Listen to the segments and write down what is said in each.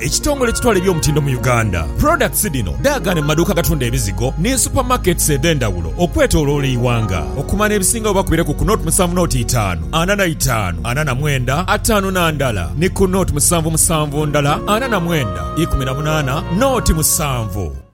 Ekitongole ekitwala eby'omutindo mu Uganda, products dhino dhaagaane mu maduuka agatunda ebizigo ni super markets edhendhawulo okwetoloola eighanga. Okumanya ebisingawo bakubire ku ku nought musanvu nought itaanu ana na itaanu ana na mwenda ataanu na ndala ni ku nought musanvu musanvu ndala ana na mwenda ikumi na munaana nought musanvu.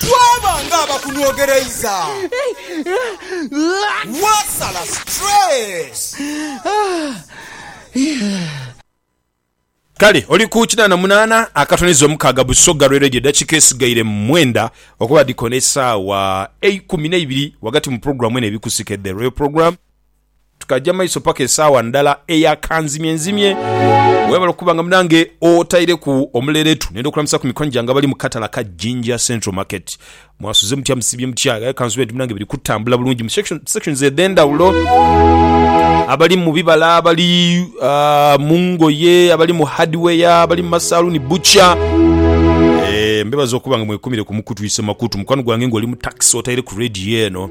Twaba nga abakunwogereiza, waasala stress. Kale oli ku kinaana munaana akatoniza omukaaga Busoga lwe Radio eddakiika esigaire mwenda okuba dhi kona esaawa eikumi neibiri ghagati mu pulogulaamu eno ebikusike The Royal Program. Tukaja maiso paka esaawa ndala eya kanzimye nzimye. Webale okuba nga munange otaireku omuleretu. Nenda okulamusa ku mikwano gyange abali mu katala ka Jinja Central Market. Mwasuze mutya, musibye mutya? Aye kansube nti munange biri kutambula bulungi mu section, sections edhendawulo. Abali mu bibala, abali ah, mu ngoye, abali mu hardware, abali mu masaluni, butcher. Eh, mbebaza okuba nga mwekumire ku mukutu ise makutu. Mukwano gwange nga oli mu taxi otaire ku radio eno.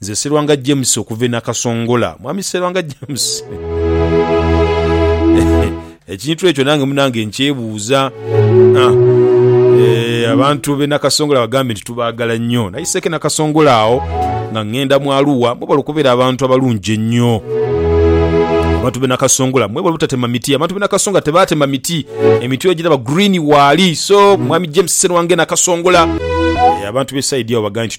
Nze Serwanga James okuva e Nakasongola. Mwami Serwanga James. Ekintu ekyo nange munange nkyebuuza. Ah. Eh, abantu be Nakasongola bagambye nti tubaagala nnyo. Nayiseeko e Nakasongola awo nga ngenda mu Arua. Mwebale okubeera abantu abalungi ennyo. Abantu be Nakasongola mwebale obutatema miti. Abantu be Nakasongola tebaatema miti. Emiti ogiraba green waali. So, Mwami James Serwanga e Nakasongola. Eh, abantu b'e side awo bagambye nti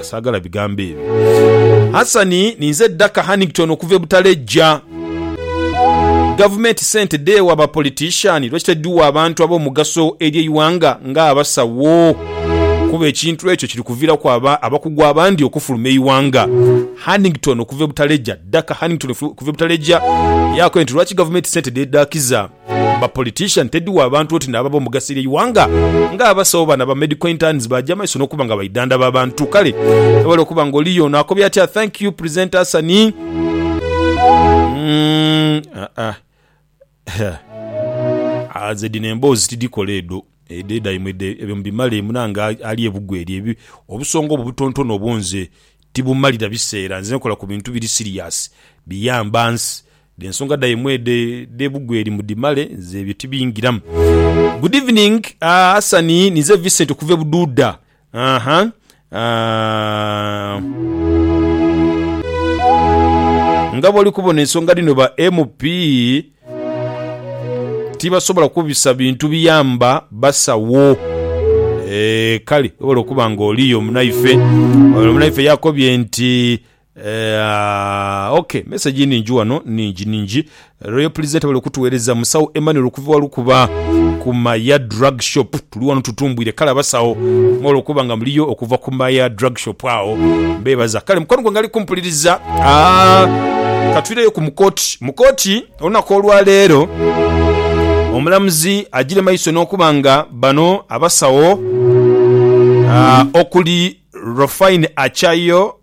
Saagala bigambo ebyo. Hassan, ninze Daka Hannington okuva e Butalejja. Gavumenti sente dheewa ba politician lwaki tedhiwa abantu ab'omugaso eri eighanga nga abasawo kuba ekintu ekyo kiri kuviraku abakugu abandi okufuluma eighanga. Hannington okuva e Butalejja Daka Hannington okuva e Butalejja yakoye nti lwaki gavumenti sente dhedhakiza Ba politician tedhi wa bantu oti nabo abomugasira eighanga nga abasawo bano aba medical interns baja maiso nokuba nga baidhandhaba abantu kale ewale okuba nga oliyo ono akobye atya thank you presenter Hasani mm aa aze dhino emboozi tidhikola edho edho edhaimwe ebyo mubimale munange ali ebugwe eri obusonga obwo obutontono obwo nze tibumalira biseera nze nkola kubintu biri serious biyamba nsi Dh'ensonga dhaimwe edhe dh'ebugweri mudhimale, nze ebyo tibingiramu. Good evening Hasani ninze Vincent okuva e Bududa nga bwoli kubona ensonga dhino ba MP tibasobola kubisa bintu biyamba basawo kale webale okuba nga oliyo munaife. Ono munaife yakobye nti Eeaa ok message nhingi ghano nhingi nhingi Royal presenter webale kutuwereza musawo Emmanuel okuva wa lukuba ku maya drug shop tuli ghano tutumbwire kale abasawo mwebale okuba nga muliyo okuva ku maya drug shop agho mbebaza kale mukwano gwange ali kumpuliriza aah katwireyo ku mukoti mukoti olunaku olwa leero omulamuzi agire maiso nokuba nga bano abasawo aah okuli Rofine Achayo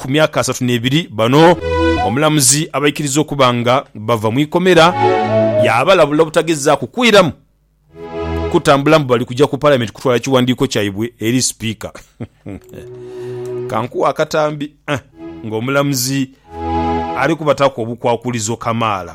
ku myaka asatu n'ebiri. Bano omulamuzi abaikiriza okuba nga bava mu ikomera, yaabalabula obutagezaaku kwiramu kutambula mbu bali kuja ku Palamenti kutwala kiwandiiko kyaibwe eri Sipiika. Kankuwe akatambi ng'omulamuzi ali kubataaku obukwakulizo kamaala.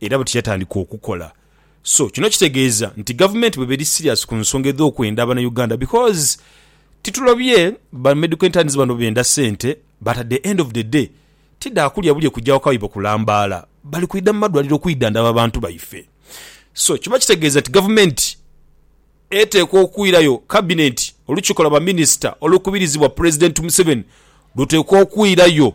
era buti yatandika okukola so kino kitegeeza nti gavumenti bweba eri serious ku nsonga edhokwenda abana Uganda because titulobye ba medical interns bano benda sente but at the end of the day tidha kulya bulye kugya waka waiba kulambaala bali kwidha mu madwaliro okwidhandhaba bantu baife so kiba kitegeeza nti gavumenti eteekwa okwirayo cabinet olukiiko lwa ba minister olukubirizibwa president Museveni luteekwa okwirayo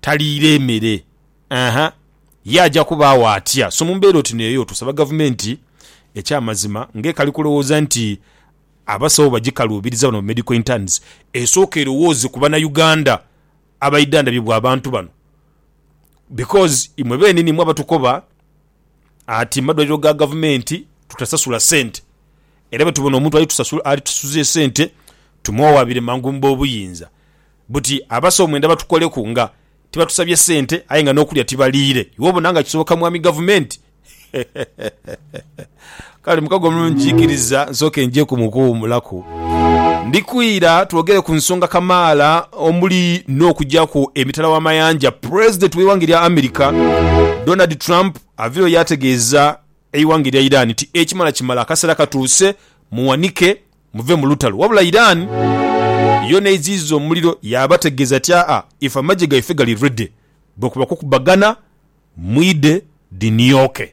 taliire mere. Aha, ye aja kubaagho atya? So mu mbeera oti n'eyo, tusaba Gavumenti eky'amazima, ng'ekali kulowooza nti abasawo bagikaluubiriza bano ba Medical Interns, esooke erowooze ku Banauganda abaidhandabibwa abantu bano because imwe beenini imwe abatukoba ati mu madwaliro ga Gavumenti tutasasula sente era bwe tubona omuntu alitusasuza esente tumwowabire mangu mu boobuyinza buti abasawo mwenda batukoleku nga tibatusabye sente aye nga n'okulya tibaliire iwe obona nga kisoboka Mwami Gavumenti? Kale mukago omulungi, nkiikiriza nsooke njeku mu kuwummulaku. Ndi kwira twogere ku nsonga kamaala omuli n'okujaku emitala w'amayanja Pulezidenti w'eighanga erya America, Donald Trump avaireyo yaategeeza eighanga erya Iran nti ekimala kimala akaseera katuuse muwanike muve mu lutalo. Wabula Iran yo n'eiziiza omuliro yaabategeeza ti aa ife amagye gaife gali ready bwekuba kukubagana mwidhe dhinioke.